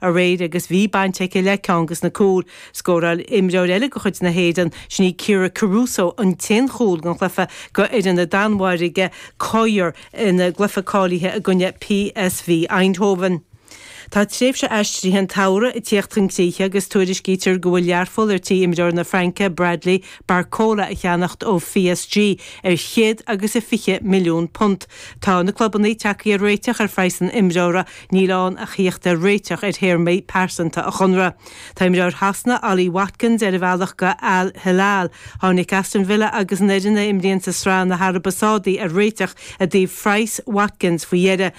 aréir agus bhí baint aici le ceann des na cúil. Scóráil imreoir eile de chuid na hÉireann, sin í Kyra Carusa, an t-aon chúl den chluiche do fhoireann na Danmhairge, Køge, ina gcluiche cáilithe i gcoinne PSV Eindhoven. Tá tréimhse aistrithe an tsamhraidh ag tíocht chun críche agus tuairiscítear go bhfuil Learpholl ar tí imreoir na Fraince Bradley Barcola a cheannacht ó PSG ar chéad agus fiche milliún punt. Tá na clubannaí tagthaí ar réiteach ar phraghas an imreora, Níl ann ach a thíocht ar réiteach ar théarmaí pearsanta a chonradh. Tá imreoir Shasana, Ollie Watkins, ar a bhealach go Al Hilal. Tháinig Aston Villa agus an fhoireann a imríonn sa sraith na hAraibe Sádaí ar réiteach i dtaobh phraghas Watkins faoi dheireadh.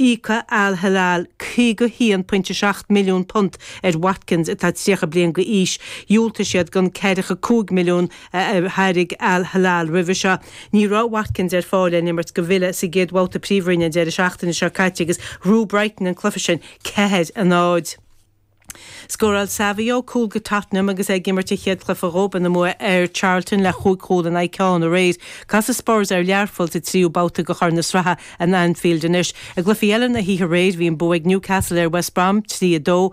Íocfaidh Al Hilal £51.7 milliún ar Watkins atá 30 bliain d'aois. Dhiúltaigh siad don £45 milliún. a thairg Al Hilal roimhe seo. Ní raibh Watkins ar fáil lena imirt do Villa sa gcéad bhabhta Príomhroinne an deireadh seachtaine seo caite agus bhuaigh Brighton an cluiche sin ceathair a náid. Scóráil Savio cúl do Tottenham agus é ag imirt a chéad chluiche dhób ina mbua ar Charlton le chúig chúl in aghaidh ceann aréir. Casfaidh Spurs ar Learpholl sa tríú babhta de Chorn na Sraithe in Anfield anois. I gcluichí eile na hoíche aréir, bhí an bua ag Newcastle ar West Brom, 3-2,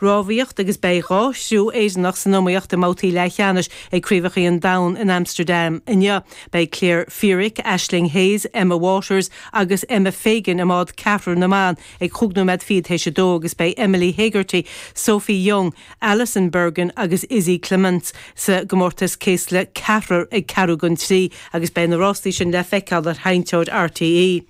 Rámhaíocht agus beidh dhá chriú Éireannach san iomaíocht i mbabhtaí leathcheannais ag Craobhachaí an Domhain in Amsterdam inniu. Beidh Claire Feerick, Aisling Hayes, Emma Waters agus Emma Fagan i mbád ceathrair na mban ag chúig nóiméad fichead théis a dó agus beidh Emily Hegarty, Sophie Young, Alison Bergin agus Izzy Clements sa gcomórtas céasla ceathrair ag ceathrú don trí agus beidh na rástaí sin le feiceáil ar sheinnteoir RTÉ.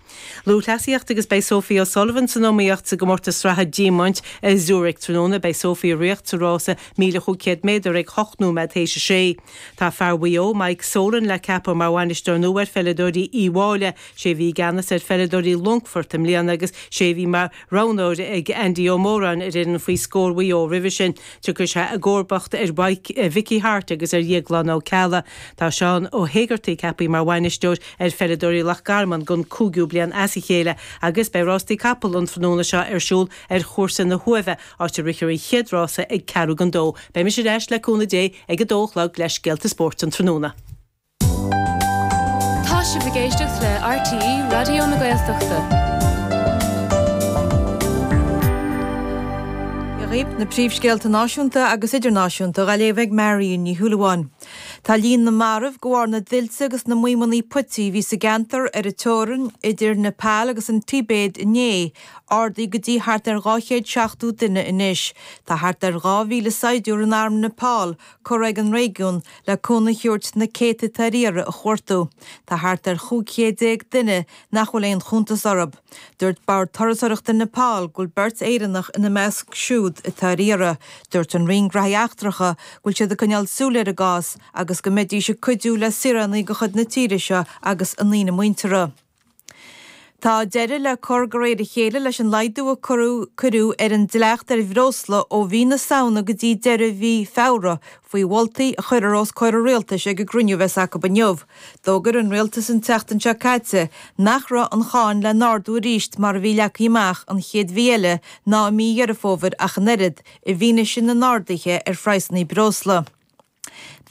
Lúthchleasaíocht agus Beidh Sophie O'Sullivan san iomaíocht sa gcomórtas sraithe diamaint i Zurich tráthnóna. Beidh Sophie ag ritheacht sa rása 1500 méadar ag hocht nóiméad théis a sé. Tá fear Mhaigh Eo, Mike Solan, le ceapadh mar bhainisteoir nua ar pheileadóirí Uíbh Fhailí. Sé a bhí i gceannas ar pheileadóirí Longfoirt i mbliana agus sé a bhí mar roghnóir ag Andy Ó Móráin ar fhoireann faoi scór Mhaigh Eo roimhe sin. Tiocfaidh sé i gcomharbacht ar Mhicí Harte agus ar Dhéaglán Ó Ceallaigh. Tá Seán Ó hÉigeartaigh ceapthaí mar bhainisteoir ar pheileadóirí Loch Garman don chúigiú bliain as a chéile agus beidh rástaí capall an tráthnóna seo ar siúl ar chúrsa na hUaimhe, áit a rithfear an chéad rása ag ceathrú don dó. Beidh mise ar ais le cúnamh Dé ag a dó a chlog le Scéalta Spóirt an tráthnóna. Tá sibh ag éisteacht le RTÉ Raidió na Gaeltachta. Seo dhaoibh na príomhscéalta náisiúnta agus idirnáisiúnta á léamh ag Marion Ní Shúilleabháin. Tá líon na marbh de bharr na dtuilte agus na maidhmeannaí puití a bhí sa gceantar ar an teorainn idir Nepal agus an Tibéid inné ardaithe go dtí thart ar 270 duine anois. Tá thart ar 2,000 saighdiúir in arm Nepal curtha chuig an réigiún le cúnamh a thabhairt na céadta atá ar iarraidh a chuartú. Tá thart ar chúig chéad déag duine nach bhfuil aon chuntas orthu. Dúirt Bord Turasóireachta Nepal go bhfuil beirt Éireannach ina measc siúd atá ar iarraidh. Dúirt an Roinn Gnothaí Eachtracha go bhfuil siad ag coinneáil súil ar an gcás agus go mbeidís ag cuidiú le saoránaigh de chuid na tíre seo agus a ndaoine muinteartha. Tá deireadh le cur de réir a chéile leis an laghdú a cuireadh ar an dleacht ar bhreosla ó mhí na Samhna go dtí deireadh mhí Feabhra faoi mholtaí a chuirfear os comhair an Rialtais ag an gcruinniú a bheas acu inniu. D'fhógair an Rialtas an tseachtain seo caite nach raibh an cháin le n-ardú arís mar a bhí leagtha amach an chéad mhí eile ná i mí Dheireadh Fómhair ach an oiread, i bhfianaise na n-arduithe ar phraghsanna breosla.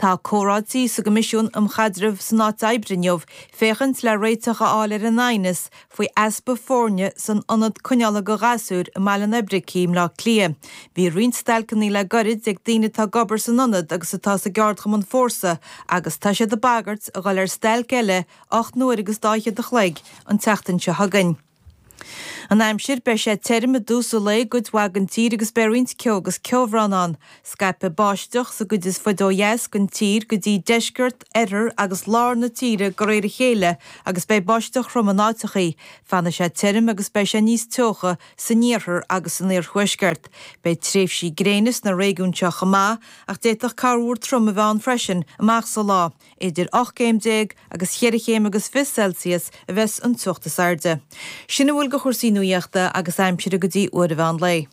Tá comhráití sa gCoimisiún um Chaidreamh san Áit Oibre inniu féachaint le réiteach a fháil ar an aighneas faoi easpa foirne san Ionad Coinneála do Ghasúir i mBaile an Oibricigh i mBleá Cliath. Bhí roinnt stailceanna le goirid ag daoine atá ag obair san ionad agus atá sa gceardchumann Fórsa agus tá siad ag bagairt a dhul ar stailc eile ocht n-uair agus dhá fhichead an chloig an tseachtain seo chugainn. An aimsir, Beidh sé tirim i dtús an lae i gcuid mhaith den tír agus beidh roinnt ceo agus ceobhrán ann. Scaipfidh báisteach sa gcuid is faide ó dheas den tír go dtí deisceart, oirthear agus lár na tíre de réir a chéile agus beidh báisteach throm in áiteachaí. Fanfaidh sé tirim agus beidh sé níos teocha san iarthar agus san iarthuaisceart. Beidh tréimhsí gréine sna réigiúin seo chomh maith ach d'fhéadfadh corrmhúr trom a bheith ann freisin amach sa lá. Idir ocht gcéim déag agus cheithre chéim agus fiche Celsius a bheas an teocht is airde. Sin a bhfuil de chúrsaí nuaíochta agus aimsire go dtí uair an mheán lae.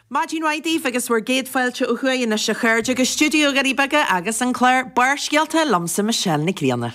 Maidin mhaith daoibh agus bhur gcéad fáilte ó thuaidh anois a chairde go stiúideo Dhoirí Beaga agus an clár Barrscéalta liomsa Michelle Nic Grianna.